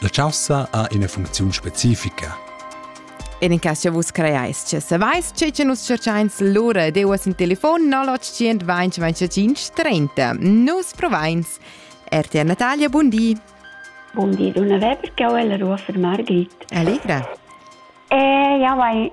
La chaussa ha ina funcziun specifica. En in cas che vus creais che savais tge che nus cercains lura ed euas in telefon 0800 25 30. Nus provains. RTR Natalia, bun di. Bun di, Donna Weber, che ho la rua fermar grit. Allegra. Eh, ja, vai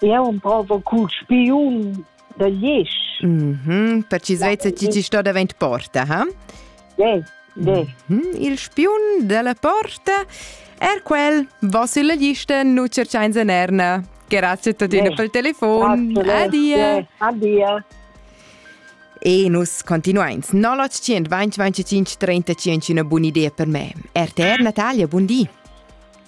Eu emprova cul spiun da Liesch. Mm -hmm. Per chi svet ti ti sto davent porta, ha? De, de. Mm -hmm. Il spiun della porta er quel, va sulla lista, nu cerchain sen erna. Grazie tuttina per il telefon. Adia. Adia. E nus continuains. 0800 20 25 35 una buona idea per me. RTR Natalia, buon dì.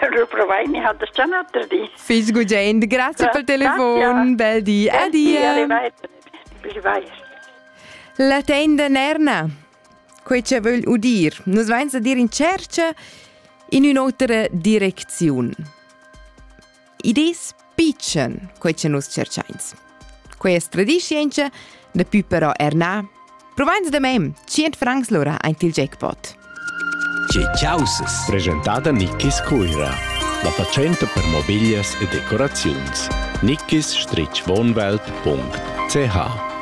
Reprovai, mi ha das già un altre di. Fiss gugent, grazie pel telefon, bel di, adia. Arrivai, arrivai. La tenda Nerna, quei che vögl udir. Nus vains a dir in cerca in un'otra direcziun. Id es pitschen, quai cha nus tscherchains. Questa tradischientscha daplü però er na. Provains da mem, 100 francs l'ora aint il jackpot. Tge chausas? Presentada Nickis Cuira. La fatschenta per mobiglias e decoraziuns. Nickis-wohnwelt.ch